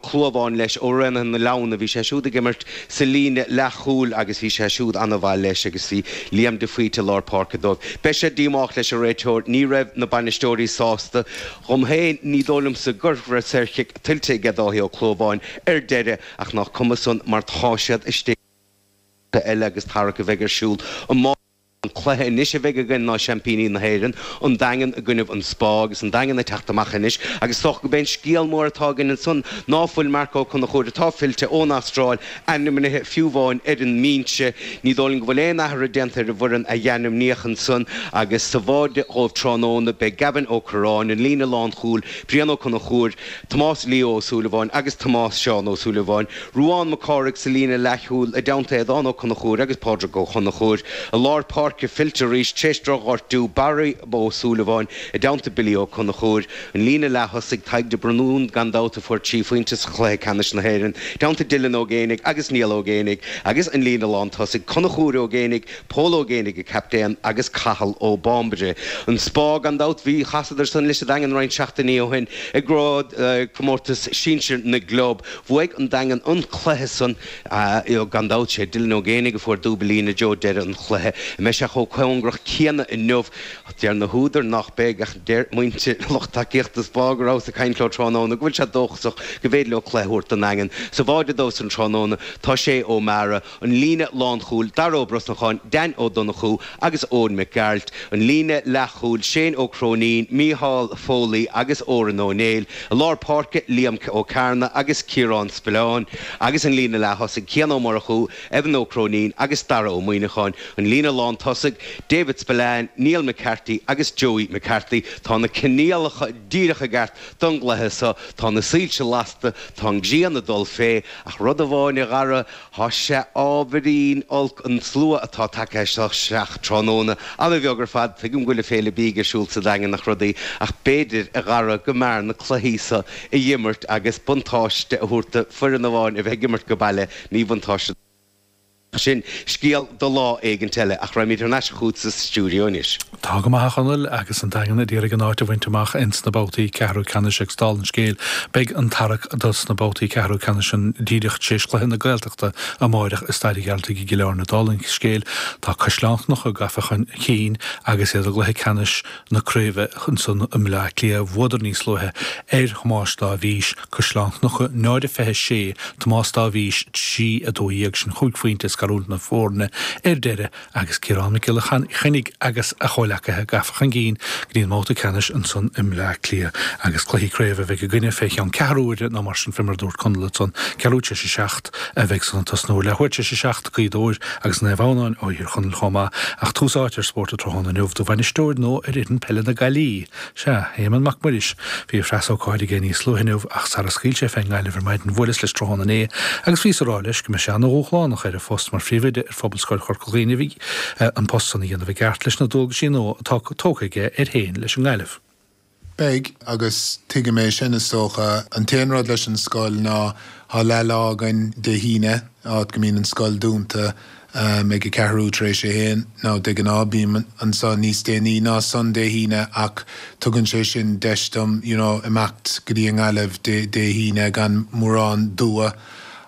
Chluamháin leis ó Raonaithe na Leamhna. Bhí sé siúd ag imirt sa líne leath-chúil agus bhí sé siúd an-mhaith leis agus bhí Liam de Faoite i lár páirce dóibh. Beidh sé díomách leis an réiteoir. Ní raibh na bainisteoirí sásta. Dhom féin, ní dóigh liomsa gur raibh saorchic tuillte aige Dáithí Ó Cluamháin ar deireadh ach nach cuma san mar tá siad istigh. Cluiche eile agus tarrac a bheidh ar siúl amárach. An cluiche anois a bheidh againn ná Seaimpíní na hÉireann, An Daingean i gcoinnibh An Spá agus An Daingean ag teacht amach anois agus is dócha go b'é an scéal mór atá againn ansan ná ná fuil Marc Ó Conchúir atá fillte ón Astráil ainmnithe fiú amháin ar an mbinse. Ní dóigh linn go bhfuil aon athrú déanta ar an bhfoireann a dh'ainmníodh ansan agus sa bháide dhóibh tráthnóna beidh Gavin Ó Curráin, an líne lánchúil, Brian Ó Conchúir, Tomás Leo Ó Súilleabháin agus Tomás Seán Ó Súilleabháin, Ruán Mac Cárthaigh sa líne leathchúil, i dteannta Aodhán Ó Conchúir agus Pádraig Ó Conchúir, i lár páirce, fillte arís tar éis droch-ghortú, Barry Ó Súilleabháin i dteannta Billy Ó Conchúir, an líne leath-thosaigh, Tadhg de Braoin, gan dabht, a fuair trí phointe i gcluiche ceannais na hÉireann, i dteannta Dylan Ó Géinigh agus Niall Ó Géinigh, agus an líne lántosaigh, Conchúr Ó Géinigh, Pól Ó Géinigh an captaen agus Cathal Ó Bambaire An Spá gan dabht. Bhí, chasadar san leis an Daingean roinnt seachtainí ó shin i gCraobh Comórtas Sinsir na gClub. Bhuaidh an Daingean an cluiche san gan dabht. Sé Dylan Ó Géinigh a fuair dúbail i dtreo dheireadh an chluiche. An mbeidh sé so chomh cóngarach céanna inniu? Deir na húdair nách beidh ach deir muintir, lucht tacaíochta an Spá go rabhas ag caint leo tráthnóna go bhfuil siad dóchasach go b'fhéidir leo cluiche a thabhairt don Daingean sa bháide dóibh san tráthnóna. Tá Shay Ó Meara. An líne lánchúil, Dara Ó Brosnacháin, Dan Ó Donnchú agus Eoin Mac Gearailt. An líne leathchúil, Shane Ó Cróinín, Mícheál Foley agus Odhrán Ó Néill. I lár páirce, Liam Ó Cearnaigh agus Ciarán Spillane. Agus an líne leath-thosaigh, Cian Ó Murchú, Evan Ó Cróinín agus Dara Ó Muíneacháin. An líne lán-tosaigh, David Spillane, Neil McCarthy agus Joey McCarthy. Tá na coinníollacha díreach i gceart don gcluiche so. Tá na soilse lasta, tá an ghrian ag dul fé ach rud amháin a déarfá, Thá sé ábhairín olc an tslua atá tagtha isteach tráthnóna. Ana bheag ar fad. Tuigim go bhfuil an Fhéile Bídh ar siúl sa Daingean agus rudaí, ach b'fhéidir gurbh fhearra go mór na cluichí so a dh'imirt agus buntáiste a thabhairt do fhoireann amháin a bheith ag imirt ag baile, míbhuntáiste do. Ach sin scéal do lá éigint eile. Ach raghaimíd thar n-ais chútsa sa stiúideo anois. Tá go maith, a Chonaill, agus an Daingean ag iarraidh áit a bhaint amach ins na babhtaí ceathrú ceannais agus dál an scéil beidh an tarrac do sna babhtaí ceathrú ceannais ann díreach tréis cluiche na Gaeltachta amáireach i Staid a' Ghearaltaigh i gCill Áirne dál an scéil tá Caisleán Chnucha gafa chun cinn agus iad i gcluiche ceannais na craoibhe san i mBleá Cliath bhuadar níos luaithe ar Thomáis Dáibhís, Caisleán Chnucha 0 26 Tomás Dáibhís 3 12 sin chúig phointe ag scarúint na foirne ar deireadh. Agus Ciarán Mac Giolla Chainnigh agus a chomhleacaithe gafa chun cinn go dtí an mbabhta ceannais ansan i mBleá Cliath agus cluichí craobh a bheidh againne fé cheann ceathrú uaire nó mar sin fé mar a dúirt Conall ansan, ceathrú tis a seacht a bheidh san ag tosnú leathuair tis a seacht, Gaoth Dobhair agus Naomh Adhamhnáin ó Thír Chonaill chomh maith ach tús áite ar Spórt an Tráthnóna inniu do bhainisteoir nua ar fhoireann peile na Gaillimhe. Sea, Éamonn Mac Muiris. Bhí a phreasócáid aige níos luaithe inniu ach sara scaoil sé fén nGaillimh ar maidin bhuaileas leis tráthnóna inné agus bhíos a rá leis go mbeidh sé ana dhúshlánach air a phost mar phríomhoide Phobalscoil Chorca Dhuibhne agus an post san a dhéanamh i gceart leis na dualgaisí nua atá tógtha aige air féin leis an nGaillimh. Beidh, agus tuigim é sin, is dócha. An t-aon rud leis an scoil ná tá leathlá againn Dé hAoine, áit go mbíonn an scoil dúnta ag a ceathrú tar éis a haon, nó de ghnáth bím anso níos déanaí ná san Dé hAoine ach tugann sé sin deis dom, you know, imeacht go dtí an nGaillimh Dé hAoine gan mórán dua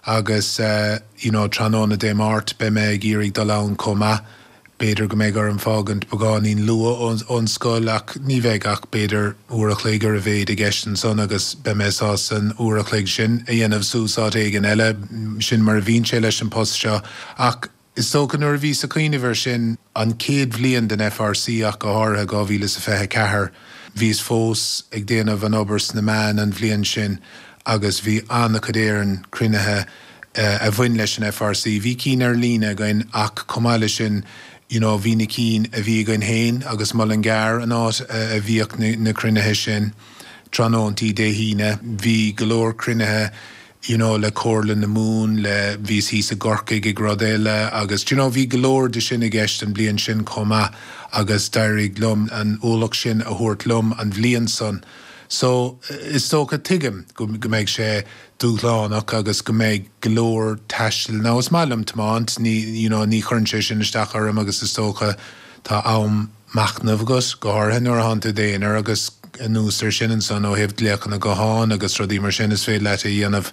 agus, eh, you know trathnóna Dé Máirt beidh mé ag iarraidh dul ann chomh maith. B'fhéidir go mbeidh orm fágaint beagáinín luath ón ón scoil ach ní bheidh ach b'fhéidir uair a chloig ar a mhéid i gceist ansan agus beidh mé sásta an uair a chloig sin a dhéanamh suas áit éigin eile. Sin mar a bhíonn sé leis an post seo. Ach is dócha nuair a bhíos ag cuimhneamh ar sin, an chéad bhliain den FRC ach go háirithe, dhá mhíle is a fiche a ceathair, bhíos fós ag déanamh an obair sna meáin an bhliain sin agus bhí ana-chuid d'you know cruinnithe a bhain leis an FRC. Bhí cinn ar líne againn ach chomh maith leis sin you know bhí na cinn a bhí againn féin agus Mullingar an áit a bhíodh na cruinnithe sin tráthnóntaí Dé hAoine. Bhí go leor cruinnithe you know le Comhairle na Mumhan, le, bhíos thíos i gCorcaigh ag rud eile agus d'you know bhí go leor de sin i gceist an bhliain sin chomh maith agus d'éirigh liom an ualach sin a thabhairt liom an bhliain san. So is dócha, tuigim go mbeidh sé dúshlánach agus go mbeidh go leor taistil. Now is maith liom tiomáint, ní, you know, ní chuireann sé sin isteach orm agus is dócha tá am machnaimh agus, go háirithe nuair a thánn tú id aonar agus anuas ar sin ansan ó thaobh glaochanna gutháin agus rudaí mar sin is féidir leat é a dhéanamh